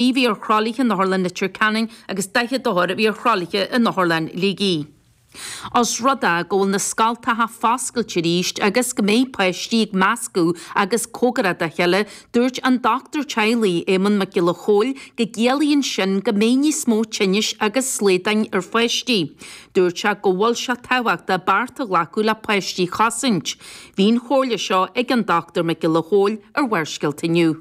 a bhí ar thralaithe in Otharlann Leitir Ceanainn agus 40 othar a bhí ar thralaithe in Otharlann Shligigh. Os rud é go bhfuil na scoltacha foscailte arís agus go mbeidh páistí ag meascadh agus cóngarach dá chéile, dúirt an Dochtúir Teaghlaigh, Éamonn Mac Giolla Chóill go gciallaíonn sin go mbeidh níos mó tinnis agus slaghdáin ar pháistí. Dúirt sé go bhfuil sé tábhachtach bearta a ghlacadh le páistí a chosaint. Bhí an chomhairle seo ag an Dochtúir Mac Giolla Chóill ar Bharrscéalta inniu.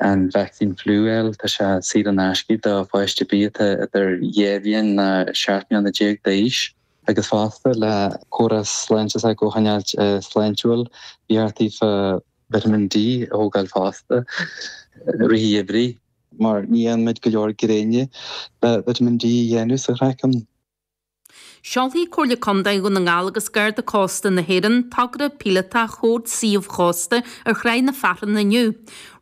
an vacsaín fliú a fháil, tá sé saor in aisce do pháiste ar bith atá idir dhá bhliain agus seacht mbliana déag d'aois. agus fosta, le córas sláinte s'acu a choinneáilt sláintiúil, iarrataí fá. vitamin D a thógáil fosta, i rith an gheimhridh. mar ní fhaigheann muid go leor gréine le vitamin D a dhéanamh sa chraiceann. Seolfaidh Comhairle Contae Dhún na nGall agus Garda Cósta na hÉireann togra píolótach Chód Suíomh Chósta ar Thráigh na Fearthainne inniu.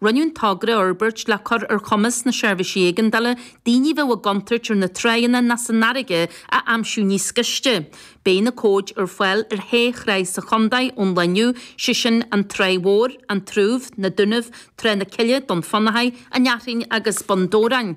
Rinneadh an togra a fhorbairt le cur ar chumas na Seirbhísí Éigeandála daoine a bheadh i gcontúirt ar na tráigheanna ná san fharraige a aimsiú níos gaiste. Beidh na cóid ar fáil ar shé thráigh sa chontae ón lá inniu, sé sin An Tráigh Mhór, An tSrúibh, Na Dúnaibh, Trá na Cille, Dún Fionnachaidh, An Fhearthainn agus Bun Dobhráin.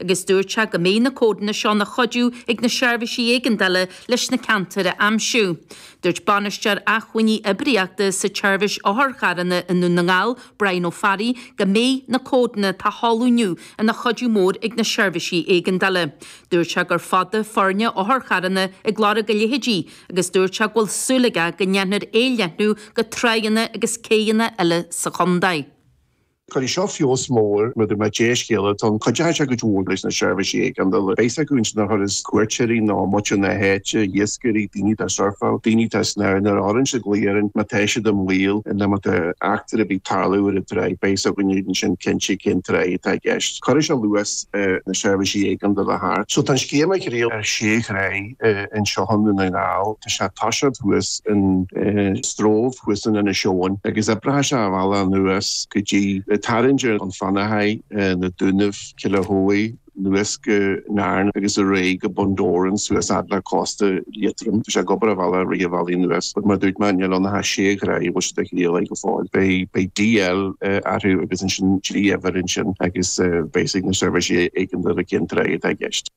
agus dúirt sé go mbeidh na códanna seo ina chuidiú ag na seirbhísí éigeandála leis na ceantair a aimsiú. Dúirt Bainisteoir Acmhainní Oibríochta sa tSeirbhís Otharcharranna i nDún na nGall, Brian Ó Fearraigh, go mbeidh na códanna atá á sheoladh inniu ina chuidiú mór ag na seirbhísí éigeandála. Dúirt sé gur fada foirne otharcharranna ag lorg a leithéidí agus dúirt sé go bhfuil súil aige go ndéanfar é a leathnú go tráigheanna agus céidheanna eile sa chontae. Cuirfidh seo feabhas mór mar a déarfá dea-scéala atá ann, cuideoidh sé go mór leis na seirbhísí éigeandála, beidh a fhios ag na turas cuairteoirí nó muintir na háite, iascairí, daoine atá ag surfáil, daoine atá ag snámh, nuair a chuireann siad glaoch orainn má tá siad i mbaol, nó má tá eachtra ar bith ag tarlú ar an tráigh beidh a fhios againn ansin cinnte cén tráigh atá i gceist. Cuirfidh sé luas ar na seirbhísí éigeandála a theacht. So tá an scéim á thriail ar 6 thráigh. anseo i nDún na nGall. Tá sé tá siad thuas in Stroove thuas in Inis Eoghain agus oibreoidh sé a bhealach anuas go dtí tarraingt ar Dhún Fionnachaidh, na Dúnaibh, Killahoey, anuas go Narin agus ar aghaidh go Bun Dobhráin suas fhad le cósta Liatroim. Tá sé ag obair a bhealach rith an bhealaigh anuas but mar dúirt mé níl ann ach sé thráigh a bhfuil siad á thriail air go fóill. Beidh beidh DL orthu agus ansin trí uimhir ansin agus beidh a fhios ag na seirbhísí éigeandála cén tráigh atá i gceist.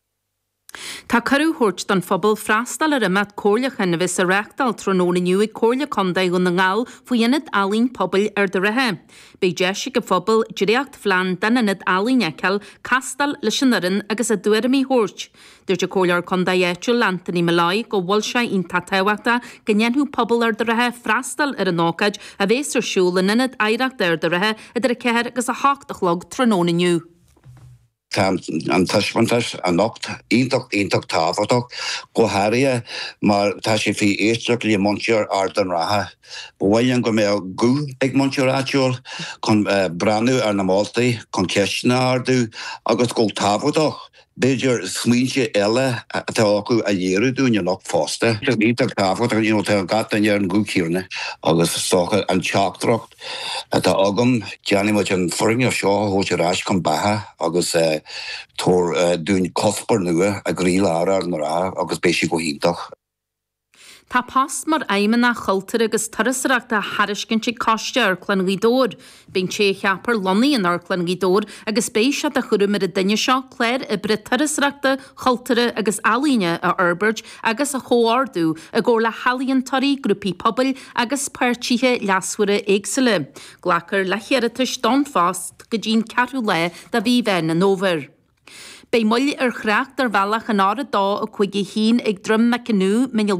Tá cuireadh á thabhairt don phobal freastal ar imeacht comhairleacháin a bheas á reachtáil tráthnóna inniu ag Comhairle Contae Dhún na nGall faoi Ionad Ealaíon Pobail Ard an Rátha. Beidh deis ag an phobal dréachtphlean den Ionad Ealaíon fheiceáil, castáil leis an fhoireann agus a dtuairimí thabhairt. Dúirt an Comhairleoir Contae áitiúil Anthony Molloy go bhfuil sé iontach tábhachtach go ndéanfadh pobal Ard an Rátha freastal ar an ócáid a bheas ar siúl in Ionad Oidhreachta Ard an Rátha idir 4 agus 8 a chlog tráthnóna inniu. Tá an taispeántas anocht iontach, iontach tábhachtach, go háirithe mar tá sé faoi éisteacht le muintir Ard an Rátha. Ba mhaith linn go mbeadh guth ag muintir áitiúil chun breathnú ar na moltaí, chun ceisteanna a ardú agus, go tábhachtach, b'fhéidir, smaointe eile atá acu a léiriú dúinn anocht fosta. Iontach tábhachtach, you know, tá gach duine ar an gcúl céanna agus is dócha an teachtaireacht atá agam, déanfaidh muid an foirgneamh seo a thabhairt ar ais chun beatha agus tabhair dúinn cuspóir nua i gcroílár Ard an Rátha agus beidh sé go hiontach. Tá post mar Fheidhmeannach Cultúir agus Turasóireachta á thairiscint ag Coiste Amharclann Ghaoth Dobhair. Beidh an té a cheapfar lonnaithe in Amharclann Ghaoth Dobhair agus beidh sé de chúram ar an duine seo clár oibre turasóireachta, chultúrtha agus ealaíne a fhorbairt, agus a chomhordú i gcomhar le healaíontóirí, grúpaí pobail agus páirtithe leasmhara éagsúla. Glacfar le hiarratais don phost go dtí'n ceathrú lá de mhí Mheán an Fhómhair. Beidh moill ar thrácht ar bhealach an R251 ag Droim Mac an Ú, Mín an Lá.